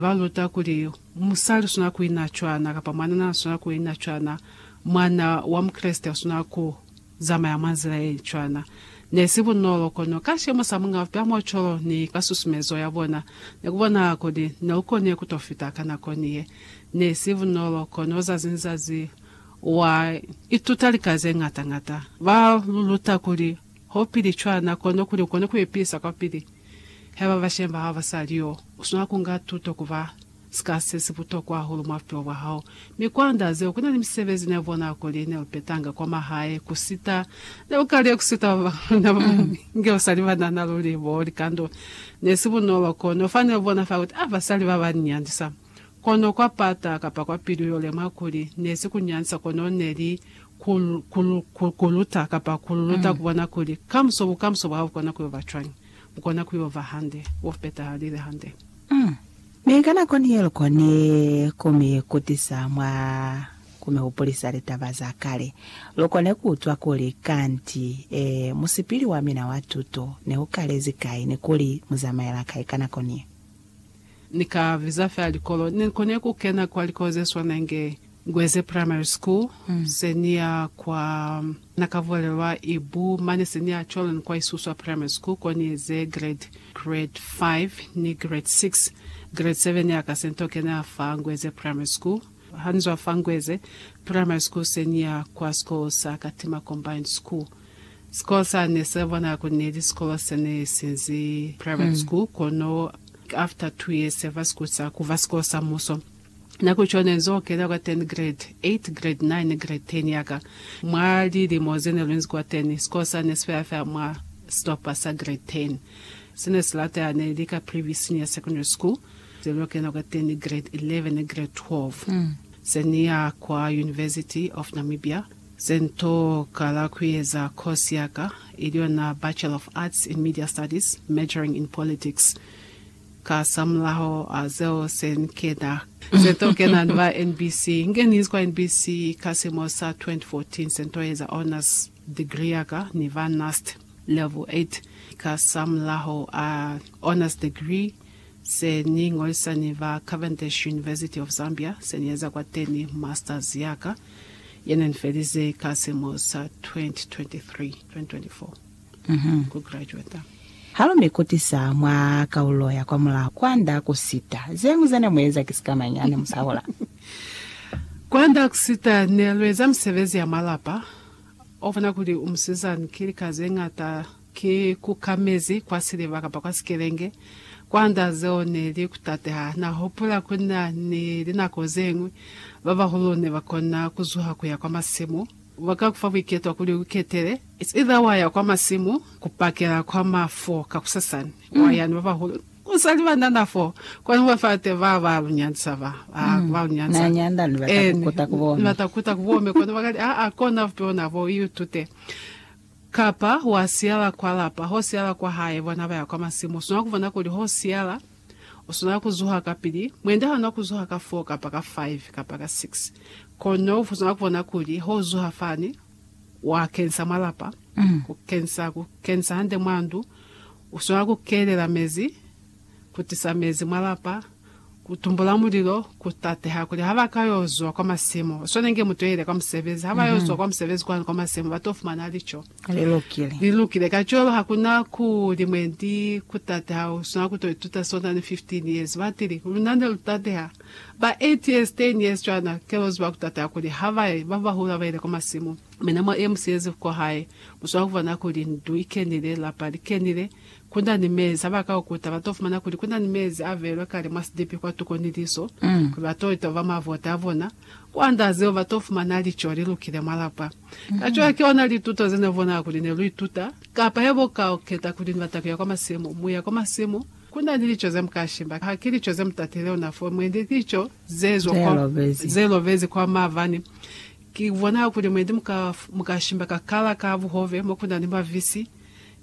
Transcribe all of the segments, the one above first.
Ba luta kuli musali u swanela ku ina cwana kapa mwanana na swanela ku ina cwana. Mwana wa Mukreste u swanela ku zamaya mwa nzila ye cwana. Ne si bunolo, kono ka sicemo sa Muñ'a Bupe a Muocolo ni ka susumezo ya bona, ne ku bonahala kuli ne u konile ku to fita ka nako ni ye. Ne si bunolo, kono zazi ni zazi wa ituta lika ze ñata ñata. Ba lu luta kuli Haupili cwana, kono kuli ukone kuipilisa kwapili haiba bashemi bahao basaliyo, uswanela kunga tuto kuba sika sesibutokwa hahulu mwa bupilo bwahao. Mi kwa nda zeo, kunani misebezi neubona kuli neupetanga kwa mahae kusita. Neukaliyo kusita babañwi luna babañwi inge basali banana luli bo likando. Nesibunolo, kono fa neubona fa kuti, Ah, basali baba ni nyandisa! Kono kwa pata kapa kwa pilu yo lemwa kuli, ne si ku nyansa kono ne li ku, ku, ku, ku luta kapa ku lu luta ku bona kuli kamuso, bukamuso bwa hao bu kona ku yo ba cwañi. Bu kona ku yo ba hande, bo petahalile hande. Mm. Mi ka nako ni ye lu koni ku mi kutisa mwa ku mi hupulisa litaba za kale, lu kone ku utwa kuli, Kanti, ee, musipili wa mina wa tuto ne u kalezi kai ni kuli mu zamaela kai ka nako ni ye. Ni ka viza fela likolo. Ne ni kone ku kena kwa likolo ze swana inge Ngweze Primary School, se ni ya kwa Nakavulelwa Ibu, mane se ni ya cwalo ni kwa Isuswa Primary School ko ni eze grade, grade five ni grade six. Grade seven ya ka se ni to kena fa Ngweze Primary School. Ha ni zwa fa Ngweze Primary School se ni ya kwa sikolo sa Katima Combined School. Sikolo sa ne sa bona kuli neli sikolo sa ne sinzi private school kono after two years sa ba sikulu sa kuba sikolo sa muso. Nako co ne nzo kena kwa teni grade eight, grade nine, grade ten yaka. Mwa lilimo ze ne lu nzi kwa teni, sikolo sa ne si fela fela mwa sitopa sa grade ten. Se ne si latela ne li ka Privy Senior Secondary School ze lu kena kwa teni grade eleven, grade twelve. Se ni ya kwa University of Namibia. Ze n'to kala kueza course ya ka, ili yona Bachelor of Arts in Media Studies, majoring in politics. Ka sa mulaho a zeo se n'kena. Se n'to kena ba NBC. N'kenize kwa NBC ka silimo sa 2014. Se n'to eza honours degree ya ka ni ba NUST level 8. Ka sa mulaho a honours degree. se ni ngolisa ni ba Cavendish University of Zambia, se ni eza kwateni Masters ya ka, ye ne ni felize ka silimo sa 2023, 2024, ku graduata. Ha lu mi kutisa mwa kaulo ya kwamulaho, kwand'a ku sita. Ze ñwi ze ne mu eza ki sika mañi ha ne mu sa hola? Kwand'a ku sita, ne lu eza misebezi ya malapa. U bona kuli u musizani ki lika ze ñata Ki kuka mezi kwa siliva kapa kwa sikelenge kwanda zeo ne li kutateha. Na hupula ku na ni linako ze ñwi ba bahulu ne ba kona ku zuha ku ya kwa masimu. Ba ka ku fa buiketwa kuli u ketele. It's either wa ya kwa masimu ku pakela kwa ma 4 kakusasani, wa ya ni ba bahulu u sa li ba nana 4, kwani u ba fa te ba ba lu nyandisa ba, ba ba lu nyandisa. Na nyanda ni bata ku kuta ku bone. Ni bata ku kuta ku bone, kono ba ka li, Aa, kona bupi ona bo, i utute. Kapa, Wa siyala kwa lapa, ho siyala kwa hae, bona baya kwa masimu. Uswanela kubona kuli ho siyala. Uswanela kuzuha kapili. Mwendi hauna kuzuha ka four, kapa ka five, kapa ka six. Kono uswanela kubona kuli ho uzuha fani, wa kenisa mwa lapa, ku kenisa, ku kenisa hande mwa ndu. Uswanela ku kelela mezi. ku tisa mezi mwa lapa, ku tumbula mulilo, ku tateha kuli ha ba ka yo zwa kwa masimo, swana inge mutu yo ile kwa musebezi, ha ba yo zwa kwa musebezi kwani kwa masimo, ba to fumana lico. Li lukile. Li lukile. Kacwalo ha ku na kuli mwendi ku tateha, u swanela ku to ituta sona ni 15 years. Ba tili, Luna ne lu tateha ba 8 years, 10 years cwana. Ke lwo ziba ku tateha kuli ha ba ye, ba bahulu ha ba ile kwa masimo, mi ne mwa ye musiyezi kwa hae, mu swanela ku bona kuli ndu i kenile, lapa li kenile. Ku na ni mezi a ba ka kukuta. Ba to fumana kuli ku na ni mezi a beelwe kale mwa sidipi kwatuko ni liso, kuli ba to itoba mwa vota a bona. Ku andaa zeo, ba to fumana lico li lukile mwa lapa. Kacwalo ki ona lituto ze ne bonahala kuli ne lu ituta. Kapa he bo ka keta kuli ni bata ku ya kwa masimu. Mu ya kwa masimu, ku na ni lico ze mu ka shiba. Ha ki lico ze mu tatile ona fo, mwendi lico ze zwa kwa, ze lobezi kwa mavani. Ki bonahala kuli mwendi mu ka, mu ka shiba ka kala ka buhove mo ku na ni mavisi.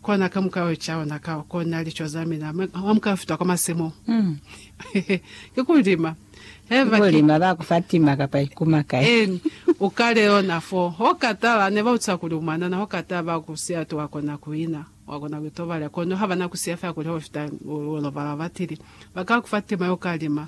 Kona ka muka yo ca ona ka kona lico za mina mwa muka yo fita kwa masimo. Ki ku lima. Ki ku lima ba ku fa tima kapa ikuma kai. Eni, u ka leona fo. Ho ka tala, ne ba utisa kuli u mwanana, ho ka tala ba ku siya tu wa kona ku ina, wa kona ku itobalela. Kono ha ba na ku siya fela kuli ho fita, u yo lobala batili. Ba ka ku fa tima yo ka lima.